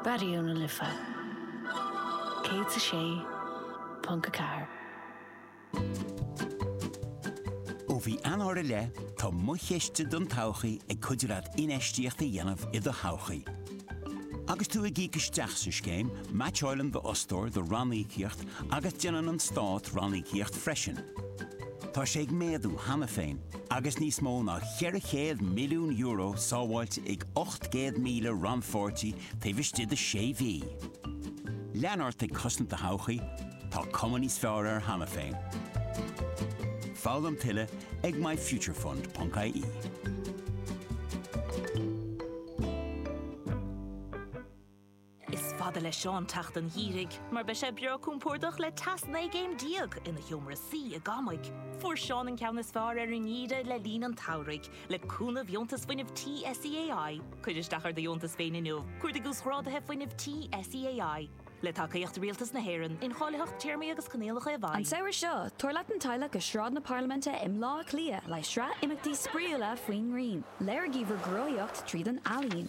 Raidió na Life 106.4. Ó mhí Eanáir i leith, tá Mo Chiste don Todhchaí ag cuidiú leat infheistíocht a dhéanamh i do thodhchaí. Agus tú ag íoc isteach sa scéim, meaitseáileann d'fhostóir do ranníocaíocht agus déanann an Stát ranníocaíocht freisin. Tá sé ag méadú cheana féin agus níos mó ná €400 milliún sábháilte ag 800,000 rannpháirtí taobh istigh de sé mhí. Lean ort ag cosaint do thodhchaí, tá cuma níos fearr air cheana féin. Foghlaim tuilleadh ag myfuturefund.ie. Is fada le Seán teacht an gheimhridh mar beidh sé breá compordach le teas 19 gcéim ina sheomra suí i gCamaigh. Fuair Seán an ceann is fearr ar an ngeimhreadh le linn an tsamhraidh, le cúnamh Dheontas Fuinnimh Tí SEAI. Cuir isteach ar do dheontas féin inniu, Cuardaigh Uasghráduithe Fuinnimh Tí SEAI. Le tacaíocht Rialtas na hÉireann, Incháilitheacht Téarmaí agus Coinníollacha i bhfeidhm. An samhradh seo, tabhair leat an teaghlach go Sráid na Parlaiminte i mBleá Cliath le sraith imeachtaí spraíúla faoin ngrian. Léirigí bhur gcruthaitheacht tríd an ealaín.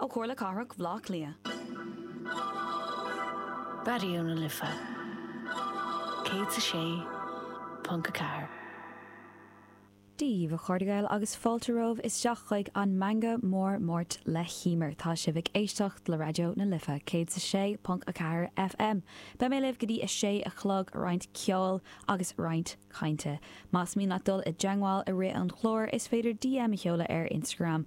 Ó Chomhairle Cathrach Bhleá Cliath. Raidió na Life 106.4. Dia daoibh, a chairde Gael, agus fáilte romhaibh isteach chuig an Meangadh Mór Máirt le hEimear. Tá sibh ag éisteacht le Raidió na Life 106.4 FM. Beidh mé libh go dtí a sé a chlog, roinnt ceoil agus roinnt cainte. Más mian leat dul i dteangmháil i rith an chláir, is féidir DM a sheoladh ar Instagram,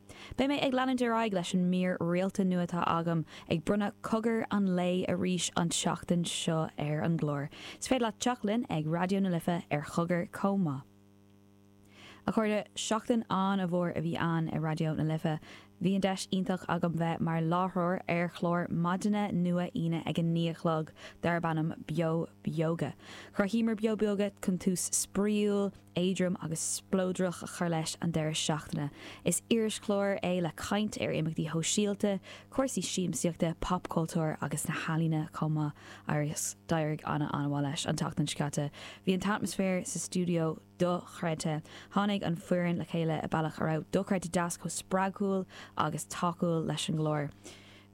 Beidh mé ag leanúint ar aghaidh leis an mír rialta nua atá agam, ag bronnadh cogar an lae arís an tseachtain seo ar an gclár. Is féidir leat teacht linn ag Raidió na Life ar chogar chomh maith. A chairde, seachtain an-mhór a bhí ann i Raidió na Life. Bhí an deis iontach agam bheith mar láithreoir ar chlár maidine nua Aoine ag a naoi a chlog darb ainm Beo Beoga. Chruthaíomar Beo Beoga chun tús spraíúil, éadrom agus spleodrach a chur leis an deireadh seachtaine. Is irischlár é le caint ar imeachtaí shóisialta, cúrsaí siamsaíochta, popchultúr agus na healaíona chomh maith agus d'éirigh ana ana mhaith leis an tseachtain seo caite. Bhí an t-atmaisféar sa stiúideo dochreidte. Tháinig an fhoireann le chéile i bealach a raibh dochreidte deas chomh spreagúil agus tacúil leis an gclár.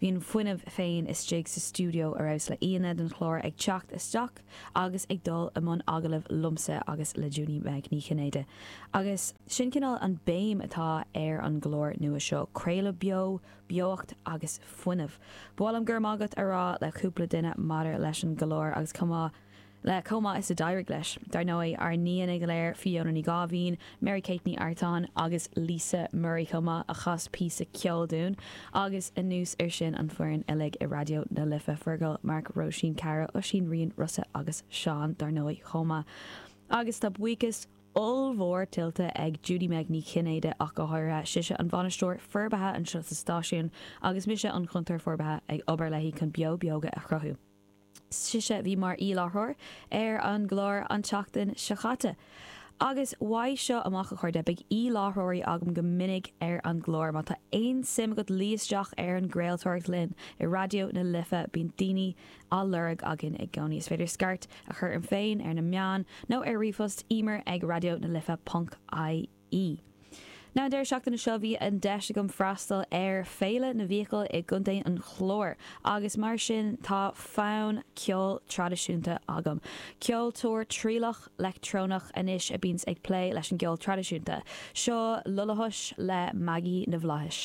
Bhí an fuinneamh féin istigh sa stiúideo ar fheabhas le haíonna don chlár ag teacht isteach agus ag dul i mbun agallaimh liomsa agus le Junie Meg Ní Chinnéide agus sin cineál an béim atá ar an gclár nua seo, craoladh beo, beocht agus fuinneamh. Ba mhaith liom 'Go raibh maith agat' a rá le cúpla duine maidir leis an gclár agus chomh maith Le chomh maith is a d'éirigh leis, dar ndóigh, ár n-aíonna go léir, Fiona Ní Gháibhín, Mary Kate Ní Artáin agus Lisa Murray chomh maith, a chas píosa ceoil dúinn, agus anuas ar sin an fhoireann uilig i Raidió na Life, Fergal, Mark, Róisín, Caragh, Oisín, Rian, Rossa agus Seán, dar ndóigh, chomh maith. Agus tá buíochas ollmhór tuillte ag Judy-Meg Ní Chinnéide ach go háirithe, sise an bhainisteoir forbartha anseo sa stáisiún agus mise an cuntóir forbartha ag obair léi chun Beo Beoga a chruthú. sise a bhí mar aoi-láithreoir ar an gclár an tseachtain seo chaite, agus uaidh seo amach, a chairde, beidh aoi-láithreoirí agam go minic ar an gclár. Má tá aon suim agat luí isteach ar an gcraoltóireacht linn i Raidió na Life, bíonn daoine á lorg againn i gcónaí. Is féidir scairt a chur orm féin ar na meáin nó ar ríomhphost, emer ag raidiona life ponc ie. An deireadh seachtaine seo bhí an deis agam freastal ar Féile na Fiacaile i gContae an Chláir agus mar sin tá fonn ceoil traidisiúnta agam. Ceoltóir trialach leictreonach anois a bíonns ag plé leis an gceol traidisiúnta. Seo Lullahush le Maggie na bhFlaitheas.